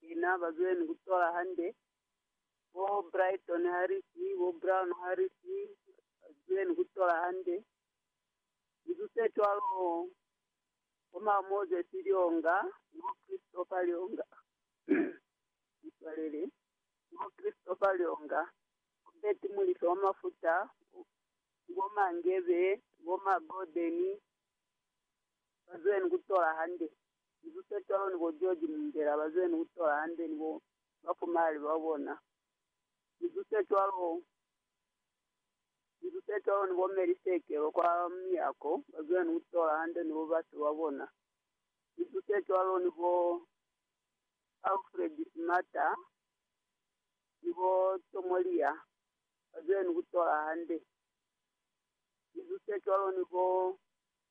Sina ba zwile ni ku tola hande, bo Brighton Harris, bo Brown Harris, ba zwile ni ku tola hande. Lizu se cwalo, bo ma Moses Lyonga, ni bo Christopher Lyonga, ni swalele, ni bo Christopher Lyonga, bo Betty Mulife wa Mafuta, bo, ni bo Mangebe, bo ma Gordon, ba zwile ni ku tola hande. Ni bo Petolo ni bo Joji mundela bazwene kutola hande ni bo bafumalali babona. Ni zuse cwalo, ni bo Petolo ni bo Meli Sekelo kwa miyako bazwene kutola hande ni bo base babona. Ni zuse cwalo ni bo Alfred Smata ni bo Tomolia bazwene kutola hande. Ni zuse cwalo ni bo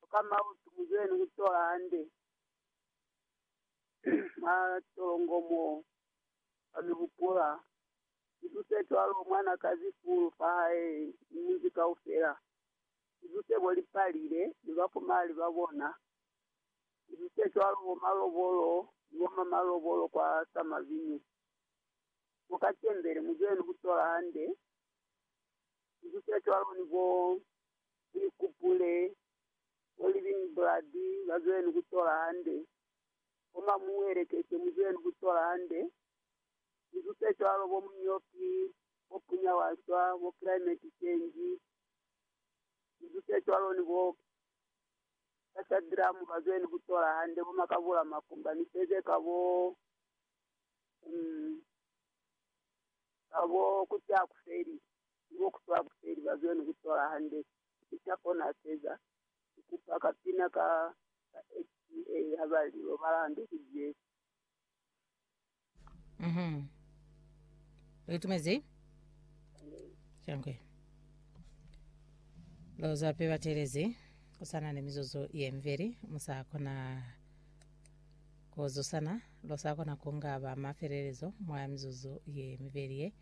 Koka mautu muzwene kutola hande mwa tolongo mo kwa mi hupula. Mizuse cwalo mwanakazi Full fahae ni munzi kaufela. Mizuse bo Lipalile ni bafumahali babona. Mizuse cwalo bo Malobolo ni bo mamalobolo kwa Samavinyu. Koka Tembele muzwene kutola hande. Mizuse cwalo ni bo Ulikupule ko living blood bazweleni kutola hande, koma muwelekeze muzweleni kutola hande. Linzwi zecwalo bo munyoki, bo punya waswa, bo climate change, linzwi zecwalo ni bo casa drum bazweleni kutola hande, bo makabula makumba ni sezeka bo, um, Ka bo ku ta ku feli, ni bo ku ta ku feli ba zwe ni ku tola hande. Ni ta kona keza, ku kupa ka pina ka, ka HCA ha ba li lobala hande kuli Jesu. Mhm. Li tumezi? Shangwe. Lo za pe batelezi, ku sa na ni mizuzu ye mibeli, mu sa kona Ku zusana, lu sa kona ku nga ba mafelelezo mwa mizuzu ye mibeli ye.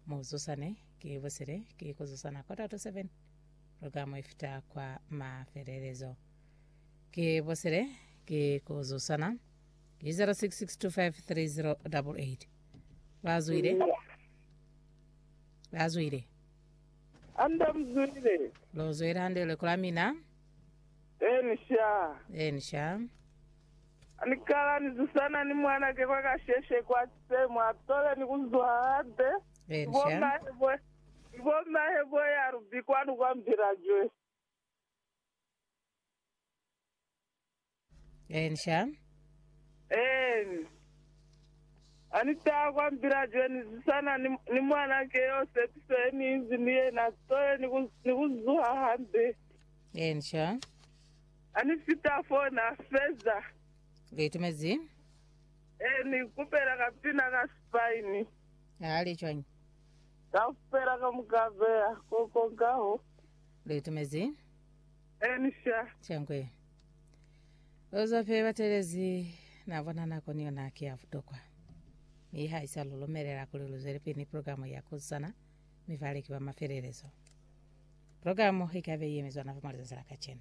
Mu zusane, ki busile, ki ku zusana quarter to seven, lu ka mu ifita kwa mafelelezo. Ki busile, ki ku zusana, ki 0662530888. Ba zwile? Ba zwile? Hande lu zwile. Lu zwile hande lileko la mina. Enisha. Enisha. Ani kala ni zusana ni mwanake kwa kasheshe kwa sisemu atole ni kuzwa hande Enisha. ibomahe bo ya rubi kwanu kwa mbila jwe. Ensha. Eeni. Ani taha kwa mbila jenu zisana ni, ni mwananke yo sepiso ye ni inzi ni yena sitole ni ku, ni ku zuha hande. Ensha. Ani fita foo na feza. Li itumezi. Eeni, kupela ka pina ka sipaini. Ha li cwañi? Kaufela ka muka beya ko konkaho. Li itumezi. Elisha. Changwe. Oza fe batelezi na bona nako ni yona ki ya butokwa. Mi ha isa lulumelela kuli luzwele pili ni programu ya kuzana mi baleki ba mafelelezo. Programu ikabe yemezwa na fa mwa lizazi la kacenu.